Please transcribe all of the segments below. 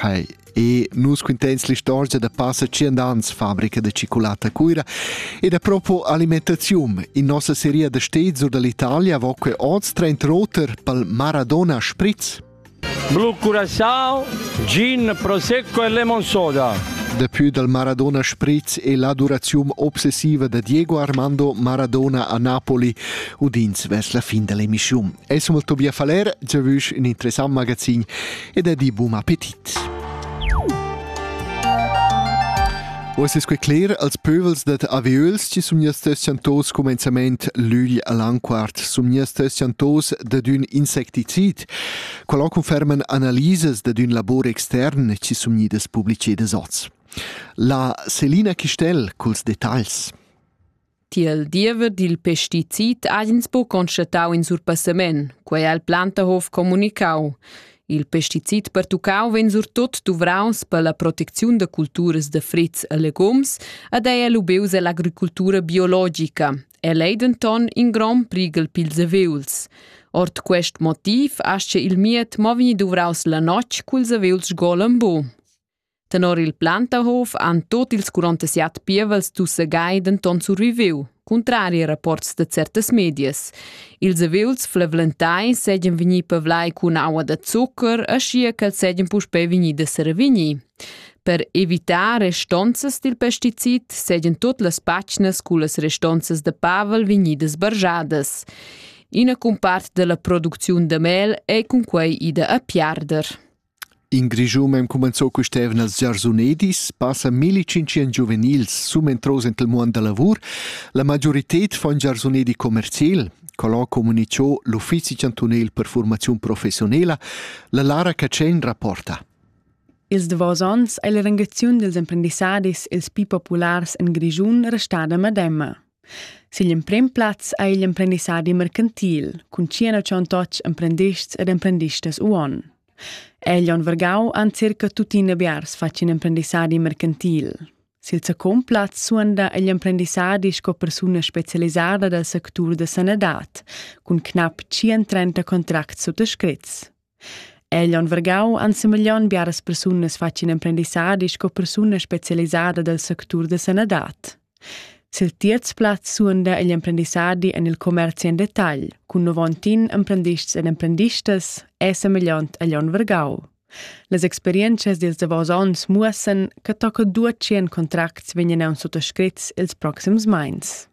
Hai, e nus quinteins l'istorgia da passa tschient ans fabrica de cicolata Cuira ed a propo alimentazium. In nossa seria da steds or dall'Italia vo que oz trent roter pal Maradona Spritz. Blu curassau, gin, prosecco e lemon soda. Dapü dal Maradona Spritz e l'adorazium obsessiva da Diego Armando Maradona a Napoli udins vers la fin dell'emissiun. Es molto bia faler, giavüsch in interessant magazin ed è di bum appetit. O es que cler als pövels dat aviöls ci sun stessan tos comenzament l'ügl all'anquart sun stessan tos dad ün insecticid qual conferman analisas dad ün labor extern ci sun idas publicedas oz. La Selina Chistel culs detagls. Tiel diever dil pesticid ha ins buc constatau in surpassament, quei ha il Plantahof communicau. Il pesticid pertuccau vegn surtut duvraus per la protecziun da culturas da fritgs e legums ed ei lubeus ell'agricultura biologica. El ei denton in grond prighel pils aviuls. Ord quest motiv ascha il miet mo vegni duvraus la notg culs aviuls golem bu. Tenor il Plantahof han tot ils 47 pievels dus segai denton surviviu, cuntrari ai rapports de certas medias. Ils evels flavlentai seigien vegni pavlai cun aua da zucker, aschia ch'els seigien puspei vegni da servigni. Per evitar restonzas dil pesticid seigien tot las pacnas cullas restonzas de pavel vegnidas barjadas. Ina cumpart della producziun de mel ei cunquei ida a piarder. In Grischun ha cumenzà quest'eivna els giarsunedis, passa milli-tschintschient giuvenils sumentros enta il muond da lavur. La magiurited fa ün giarsunedi commercial. Colo comunicho l'uffizi chantunel per fuormaziun professionela. La Lara Catschen rapporta. Ils davos ons ei la rangaziun dils emprendissadis ils pli populars en Grischun restada medema. Sin l'emprim plaz ha igl emprendissadi mercantil cun tschient tschontocs emprendists ed emprendistas uon. El on vargau han circa tuttina biars fatg in emprendissadi mercantil. Sil secund plaz suonda igl emprendissadi sco persuna specialisada dal sectur da sanadad cun knapp 130 contracts suttascritts. El on vargau ensemeglion biaras persunas fatg in emprendissadi sco persuna specialisada del sectur da sanadad. Sil terz plaz suonda igl emprendissadi en il commerci en detagl, cun novontin emprendists ed emprendistas è semegliont agl onn vargau. Las experientschas dils davos onns muossan che tocca duatschien contracts vegnan suttascrits ils proxims meins.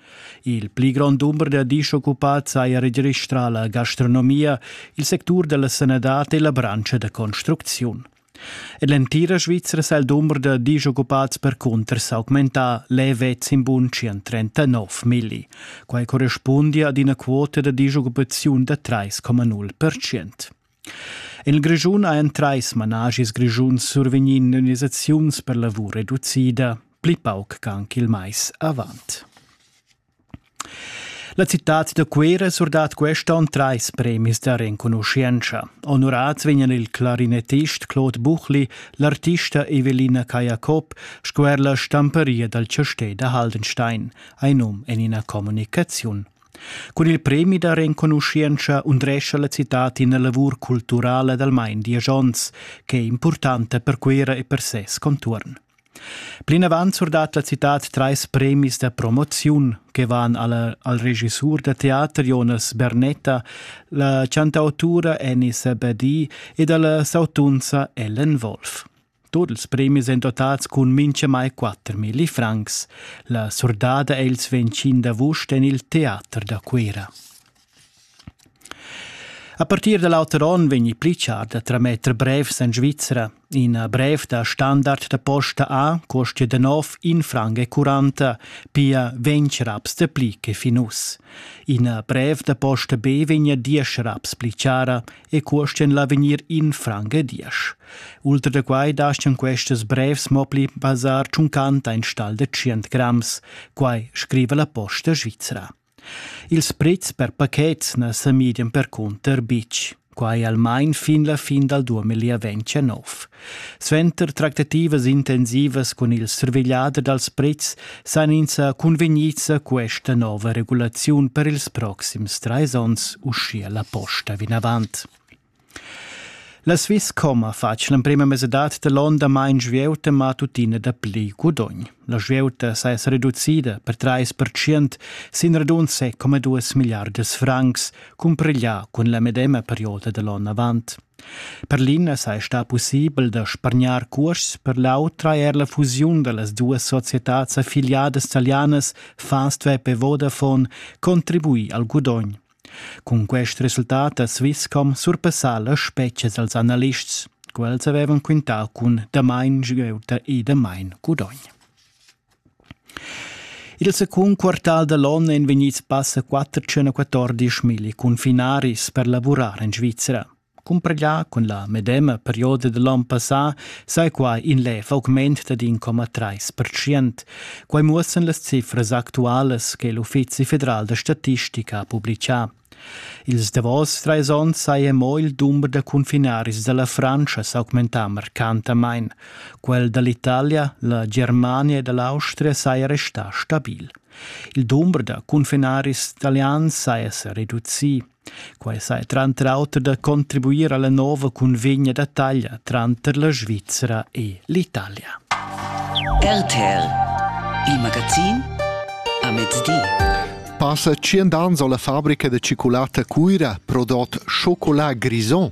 Il pli grond dumber da dischoccupats haja registrà la gastronomia, il sectur da la sanadad e la branscha da construcziun. En l'entira Svizra sa il dumber da dischoccupats percunter s'augmentà levez in bunschian 39 milli. Quai correspundia ad ina quota da dischoccupaziun da 3,0 percent. En il Grischun hajan trais manaschis grischuns survegnì indemnisaziuns per lavur reducida, pli pauc ch'anc il mais avant. La citad da Cuira surdat quest onn trais premis da renconuschientscha. Onorads vegnan il clarinettist Claude Buchli, l'artista Evelina Cajacob sco er la stamparia dal chastè da Haldenstein, ein num en ina communicaziun. Cun il premi da renconuschientscha undrescha la citad ina lavur culturala dal main diesch onns che è impurtanta per Cuira e per ses contuorn. Plinavant surdat la citad trais premis da promoziun che van alla, al regissur da teater Jonas Bernetta, la chantautura Annie Sabadi ed alla sautunza Ellen Wolf. Tut ils premis èn dotads cun mintgamai quattermilli francs. La surdada è il svencin d'avust en il teater da Cuira. A partir da l'auter onn vegni Pritchard a trametter brevs en Svizra. Ina brev da standard da posta A costia da nov in franc e quaranta, pia ventg raps de pli che fin uss. Ina brev da posta B vegnia diesch raps pli chara e cuostien l'avegnir in franc e diesch. Ultra da quai daschian questas brevs mo pli basar tschuncanta in stal de 100 grams, quai scriva la posta svizra. Ils prezs per pachets na sa midian percunter bitg, quai almain fin la fin dal 2019. Suenter tractativas intensivas cun il survegliader dals pretschs san ins cunvegnits questa nova regulaziun per ils proxims trais onns, uschia la posta vinavant. La Swisscom ha fatg l'emprima mesadad da l'onn damain svieuta, ma tuttina dapli gudogn. La svieuta s'es reducida per trais pertschient sin radunse come duas milliardas francs cumpriglià cun la medema perioda da l'on avant. Per l'ina sai sta pussibel da spargnar cuosts, per l'autra er la fusiun da las duas societats affiliadas talianas Fastweb e Vodafone contribui al gudogn. Cun quest resultat a Swisscom surpassa las spetgas als analists. Quels avevan quintà cun damain sgeuta e damain gudogn. Il secund quartal da l'onn èn vegnids passa 414 cunfinaris per lavurar en Svizra. Cumpregà cun la medema perioda da l'on passà saja quai in lev augment dad in coma trais pertschient. Quai muossan las cifras actualas che l'Uffizi federal da statistica ha publicà. Ils davos trais onns saja mo il dumber da cunfinaris da la Frantscha s'augmentà marcantamain. Quel da l'Italia, la Germania e da l'Austria saja restà stabil. Il dumber da cunfinaris italians saja sa reducì. Quai saja tranter auter da contribuir a la nova cunvegna da taglia tranter la Svizra e l'Italia. RTL, il magazin a mezdi. Passa tschient ans ho la fabrica da ciculata Cuira prodot chocolat grison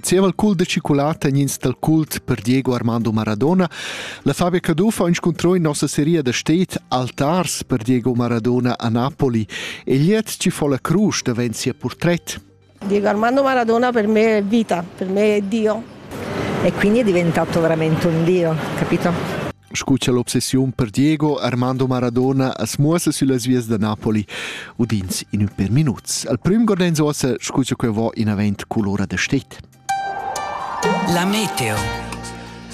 Zieva il cul da chocolata en ins dal cult per Diego Armando Maradona, la Fabia Caduff ha inscuntrò in nossa seria da state Altars per Diego Maradona a Napoli e liet ci fu la crusch davent sia portret. Diego Armando Maradona per me è vita, per me è Dio. E quindi è diventato veramente un Dio, capito? Scu cha l'obsessiun per Diego Armando Maradona as muossa süllas vias da Napoli udins in ün per minuts. Al prüm guardains uossa scu cha quai vo inavant culora da stet. La meteo.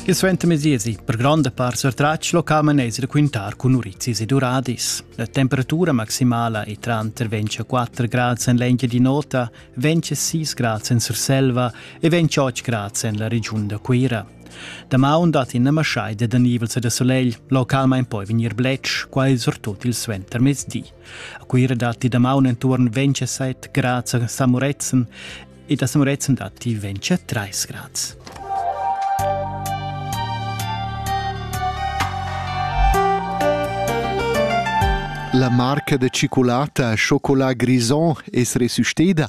Il suenter mesiesi per gronda part sortratg locamen es raquintar cun urizis ed uradis. La temperatura maximala è tranter 24 grad en l'engia di nota, 26 grad en Surselva e 28 grad en la regiun da Cuira. Damaun datti ina maschaida da nivels e da sulegl, localmain poi vegnir bletsch, quai surtut il suentermezdi. A Cuira datti damaun enturn 27 grad a Samuretzen ed a Samuretzen datti 23 grad. La marca de cicolata Chocolat Grison es resusciteda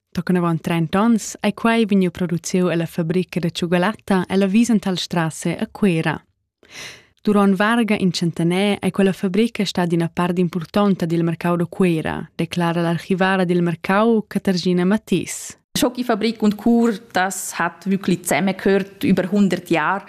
Tochen avon trenta onns ei quei vegniu produciu ella fabrica da tschugalatta ella Wiesenthal Strasse a Cuera. Duront varga in centener ei quella fabrica stada ina part impurtonta dil mercau da Cuera, declara l'archivara dil mercau Catergina Mattis. Schocki-Fabrik und Kur, das hat wirklich zusammengehört über 100 Jahre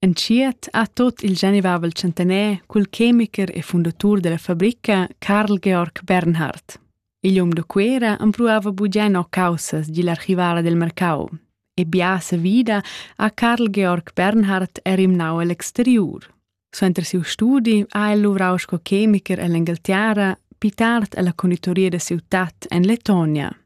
Entschiet ha tut il genivavel tschentaner cul chemicher e fundatur dalla fabrica Carl Georg Bernhard. Igl um da Cuera empruava buca no caussas digl archivala del mercau e bia savida ha Carl Georg Bernhard er imnau egl exteriur. Suenter siu studi ha el luvrau sco chemicher ell'Engalterra, più tard alla conditoria da ciutat en Letonia.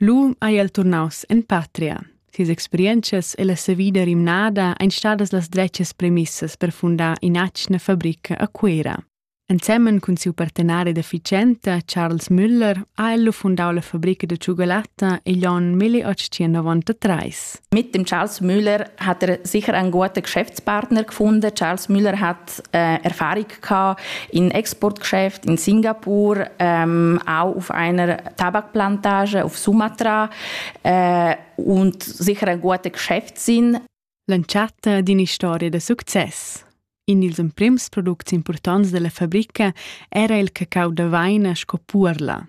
Lu ei el turnaus en patria. Sias experientschas e la savida rimnada ein stadas las dretgas premissas per fundar in'atgna fabrica a Cuera. Ensemen cun siu partenari da Ficenta, Charles Müller, ha el fundau la fabrica da cioccolata igl onn 1893. Mit dem Charles Müller hat er sicher einen guten Geschäftspartner gefunden. Charles Müller hat Erfahrung gehabt in Exportgeschäft in Singapur, ähm, auch auf einer Tabakplantage auf Sumatra äh, und sicher ein guter Geschäft sind. L'entschatta d'ina storia da success. In ils emprims products importants della fabrica era il cacau da vaina sco puorla.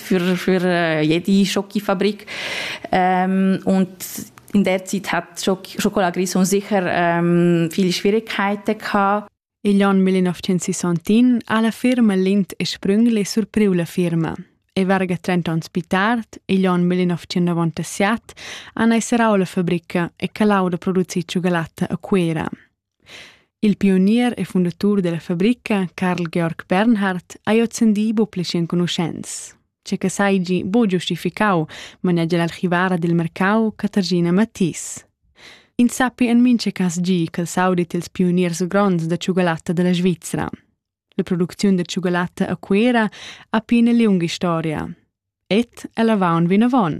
für, für jede Schokofabrik. Ähm, und in der Zeit hat Schokoladgriss sicher ähm, viele Schwierigkeiten gehabt. Igl ann 1961 ha la firma Lind e Sprüngli surpriu la firma. E verga 30 ans più tardi, igl ann 1997, han esserau la fabrica e calau da producir cioccolatte a Cuera. Il pionier e fundatur dalla fabrica, Carl Georg Bernhard, ha ozendi buca pli enconuschents. Che che seigi buc giustificau, manegia l'archivara dil mercau Caterina Matthis. Ins sappi en mincha cas gi ch'el saudit ils pioniers gronds da tschugalatta dalla Svizra. La producziun da tschugalatta a Cuera ha pia ina liunga historia. Ed el avaun vinavon.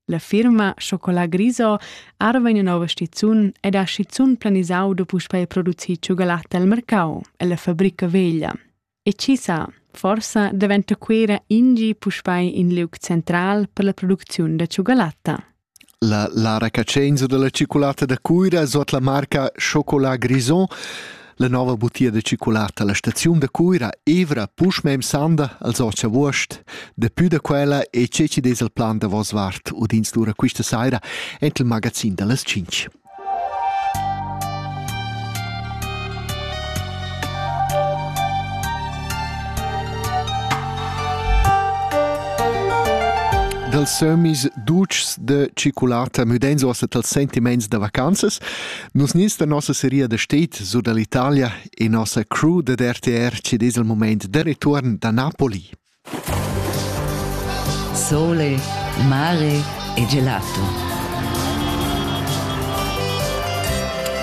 La firma Chocolat Griso arva ina nova stizun ed ha schizun planisau da puspei producir tschugalatta al mercau ella fabrica veglia. E chi sa, forsa daventa Cuera ingi puspei in liug central per la producziun da tschugalatta. La la recaschainza da la tschiculatta da Cuira es ot la marca Chocolat Grison. La nouva butia da tschiculatta a la staziun da Cuira evra puschmè im sanda als ot chavuost. Dapü da quella e tscheci dess il plan davos vart udins lura quista saira ent il magazin da las tschinch. dals sömis ducs de ciculata müdenz ossa tals sentiments da vacanzas. Nus nins da nossa seria da state su dall'Italia e nossa crew da RTR ci des il moment de return da Napoli. Sole, mare e gelato.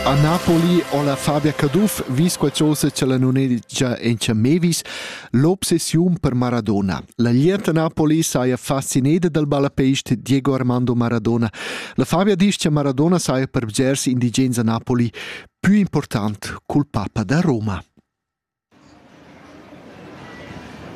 A Napoli ho la Fabia Caduff vis qualchosa cha la nun editscha Encha Mevis l'obsessiun per Maradona. La glietta Napoli saja fascineda dal ballapeist Diego Armando Maradona. La Fabia disch cha Maradona saja per bgers indigens a Napoli pü important cul papa da Roma.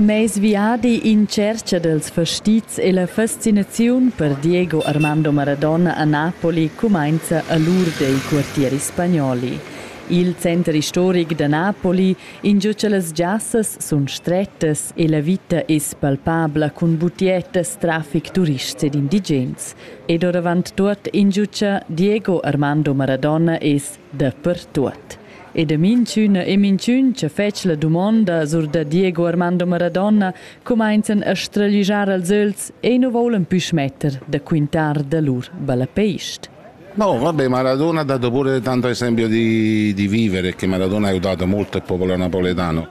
Meis viadi in tschercha dals fastizs e la fascinaziun per Diego Armando Maradona a Napoli cumainza a l'ur dei quartieri spagnoli. Il center istoric da Napoli, ingio cha las giassas sun strettas e la vita es palpabla cun butiettas, trafic, turists ed indigens. Ed ouravant tuot ingio cha Diego Armando Maradona es Dapertuot. E da minchüna e minchün cha fetsch la dumonda sur da Diego Armando Maradona cumainzan a straglijar als ögls e nu voulan pü schmetter da quintar da lur ballapeist. No, vabbè, Maradona ha dato pure tanto esempio di, di vivere, che Maradona ha aiutato molto il popolo napoletano.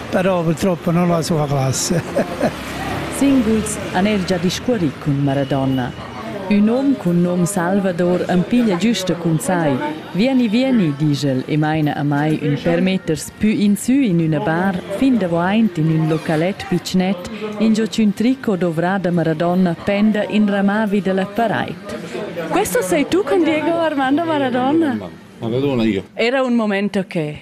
però purtroppo non la sua classe. Singuls han er già discurrì cun Maradona. Ün hom cun nom Salvador am piglia güsta cun sai. Vieni, vieni, digel e maina a mai ün per meters pü insü in üna bar, fin davoaint in ün localet pitschnet, ingio ch'ün tricot dovrà da Maradona penda in ramà vi da la paraid. Questo sei tu con Diego Armando Maradona? Maradona io. Era un momento che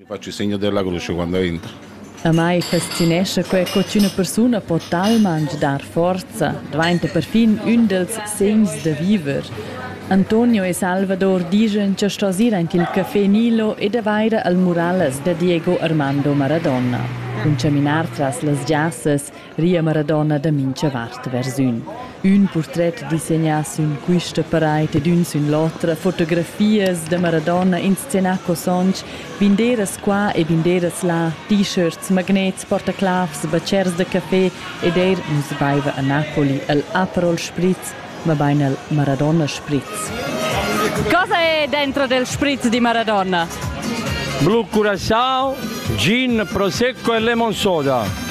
Amai fascinescha quai co ch'üna persuna po talmaing dar forza, dvainta perfin ün dals segns da viver. Antonio e Salvador dischan cha sto ir anch i'l Café Nilo ed avair al murallas da Diego Armando Maradona. Cun chaminar tras las giassas ria Maradona da mincha vart vers ün. Ün purtret disegnà sün quista paraid ed ün sün l'otra, fotografias da Maradona inscenà co sonch, binderas qua e binderas là, t-shirts, magnets, portaclavs, batschers da café ed eir nu's baiva a Napoli e'l Aperol Spritz mabain el Maradona Spritz. Cosa è dentro del Spritz di Maradona? Blu Curacao, gin, prosecco e lemon soda.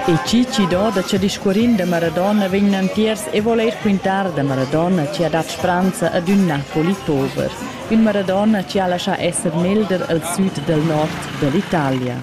E Cici do da che discuorin da Maradona vegnan tiers e voler quintar da Maradona che ha dat spranza ad un Napoli pover, un Maradona che ha lascià esser melder al sud del nord dell'Italia.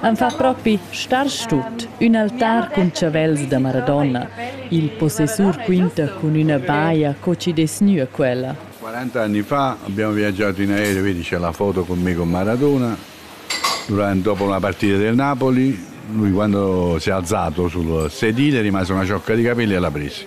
Am fa propi starsch tut, ün altar cun chavels da Maradona, il possessur quinta cun üna baja co chi dess gnir quella. Quaranta anni fa abbiamo viaggiato in aereo, vedi c'è la foto con me con Maradona, durante, dopo la partita del Napoli, lui quando si è alzato sul sedile è rimasta una ciocca di capelli e l'ha presi.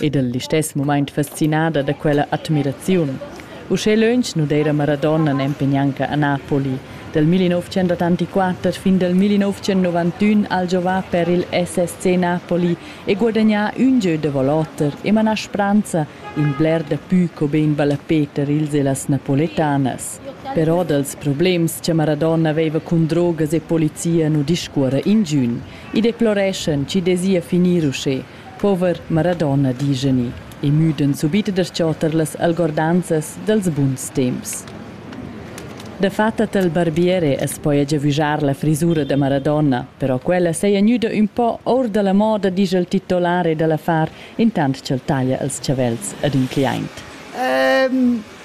ed el listess mumaint fascinada da quella admiraziun. Uschè lönch nu d'eira Maradona nempe gnanca a Napoli. Dal 1984 fin dal 1991 ha'l giovà per il SSC Napoli e guadagnà ün gieu da volotter e manà spranza in bler dapü co be in ballapè tar ils e las napoletanas. Però dals problems cha Maradona veiva cun drogas e polizia nu discuorra ingün. I deploreschan chi'd esa finir uschè, Pover Maradona, discheni, e müden subit da s-chotter las algordanzas dels buns temps. Dafatta tel barbiere as poja giavüjar la frisura da Maradona, però quella seja gnüda ün po our da la moda, disch il titolare da l'affar, intant ch'el taglia els chavels ad ün cliaint.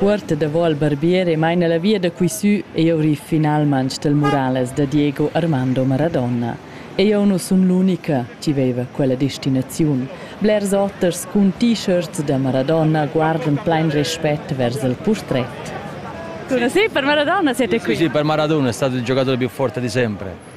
Uorta davo al barbier e maina la via da quisü eau riv finalmanch del Murales da Diego Armando Maradona. Eau nu sun l'unica chi veiva quella destinaziun. Blers oters cun t-shirts da Maradona guardan plain respet vers il purtret. Sì, per Maradona siete qui. Sì, per Maradona è stato il giocatore più forte di sempre.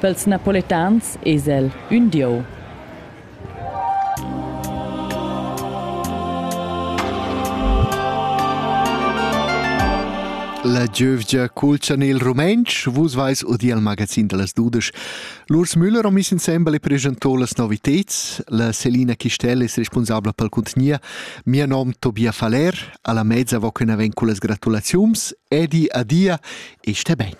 Pels napoletans es el ün dieu. La giövgia culchan il rumentsch, vus vais udi al magazin da las dudesch. L'Urs Müller on miss insembel e presentò las noviteds. La Selina Chistel es responsabla pel contgnia. Mia nom Tobia Faller, alla mezza vo que na ven cu las gratulaziums. Edi adia e sté ben.